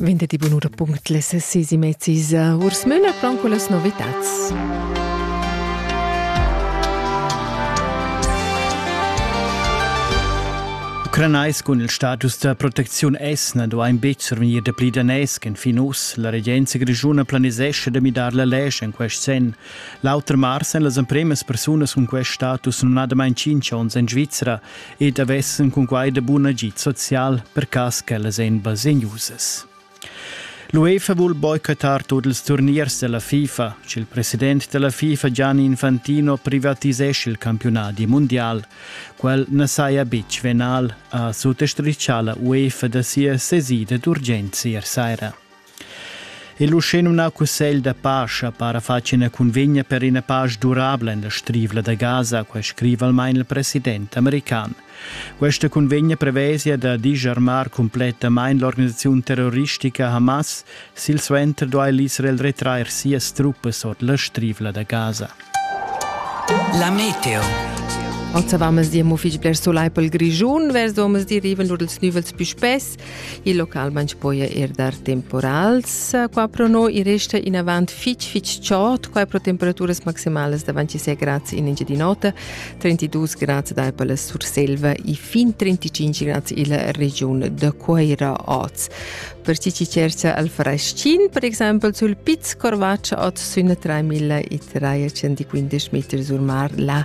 Ventetdi bunura punct les sisi mezzis urs Müller con quellas novitats. Ucranais cun il status da protecziun esna do ein betg survegnir de pli danès en fin us. La regenza grigiuna planisesce de midar la lege en quest sen. L'auter mars en las empremas persunas cun quest status non ha damain cinc onns en Svizzera ed avessen cun quai de bun agid social per cas ch'ellas ein basegnusas. L'UEFA vul boicotar tut ils turniers della FIFA. Il president della FIFA Gianni Infantino privatisesce il campionati mondial. Quel ne saja bitg venal, ha suttostrichà la UEFA da sia sesida d'urgenza ier saira. Il uschenumnau cussegl da paja para fatg ina cunvegna per ina paja durabla en la strivla da Gaza, quai scriva almain il president american. Questa cunvegna prevesia da disarmar cumplettamain l'organisaziun terroristica Hamas, silsuenter duai l'Israel retrair sias truppas ord la strivla da Gaza. La Meteo Oz avamos dir mo fich bler solai pel Grischun, vers omens diriven lur els nüvels pü spess. Il local manch poja eir dar temporals. Qua pro no i resta inavant fich fich chod, qua pro temperaturas maximalas davant 6 grads in Engiadin'Ota, 32 grads da per la Surselva e fin 35 grads illa regiun da Cueira oz. Per chi chi cercha al fraschin, per exempel sul Piz Corvaccio oz sün 3315 meter sur mar, la